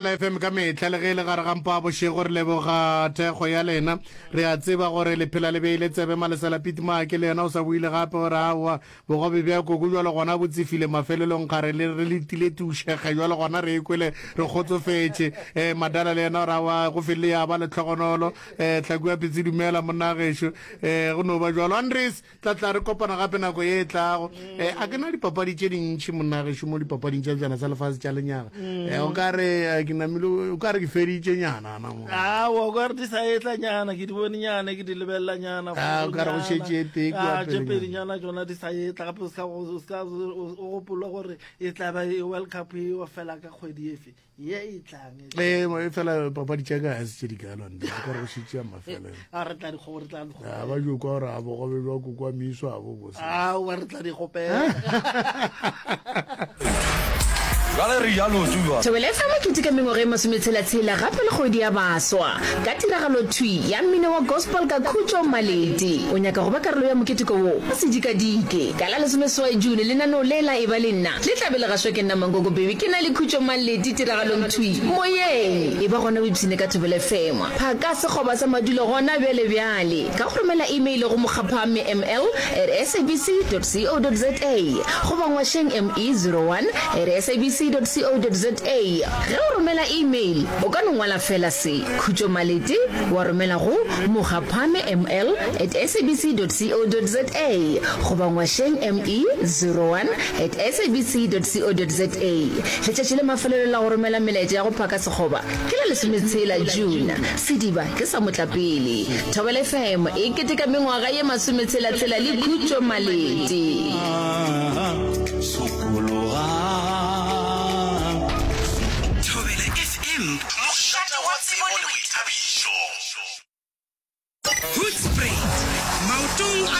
La FM ka mehla le ge e le gare ga mpa a bošego re leboga thekgo ya lena re a tseba gore le phela le beile tsebe malesela pit maake le yena o sa buile gape o re aowa bogobe bja koko jwalo gona bo tsefile mafelelong kgare le re le tile tušege jwalo gona re ekwele re kgotsofetše eh madala le yena o re aowa go felele ya ba le tlhogonolo eh tlhakua pitsi dumela monna gešo eh go no ba jwalo andres Ke tla tla re kopana gape nako ye e tlago um a ke na dipapadi tše dintšhi monnagešu mo dipapading tša bjana tsa lefase tša lenyaga um o ka re eh, ke namile o ka re ke feditše nyana na mo awa o ka re di sa etla nyana ke di bone nyana ke di lebelela nyana Ah, o ka re go šetše e tee kua Ah, tše pele pedi nyana tsona di sa etla gape o ska go- o ska- o- o gopole gore e tla ba e world cup eo fela ka kgwedi efe ye e tlang e fela papadi tša ka ga se tše di kalo nte se ka re go šitše ya mafelelo a re tla dikgobo re tla dikgobo a ba jo kwa gore a bogobe jwa kokwa miso a bo bose a wa re tla dikgopela thobelefa mokete ka mengwaga e masometshela-tshela gape le kgwedi ya baswa ka tiragalo thwi ya mmino wa gospel ka khutšo maledi o nyaka go ba karolo ya moketeko wo sedikadike ka la lesomeswai june lenaneo le la e ba le nna Le tla be le gašwa ke nna Mankoko Baby ke na le khutšo Maleti tiragalong thwi moyeng E ba gona o ipshine ka thobele Fengwa phaka sekgoba sa madulo gona bjale bjale Ka go romela email go mokgaphamme ml at sabc dot co dot za Goba ngwašeng ME zero one at sabc dot co dot za Ge o romela email o ka no ngwala feela se Khutšo Maleti wa romela go mokgaphamme ml at sabc dot co dot za Goba ngwašeng ME zero one at sabc.co.za Letšatši la mafelelo la go romela melaetša ya go phaka sekgoba ke la lesometshela, June. Sediba ke sa motlapele. Thobela FM e keteka mengwaga ye masometshela-tshela le Khutšo Malete. Thobela FM, mošate wa tsebo le boithabišo. Hoedspruit, maotong a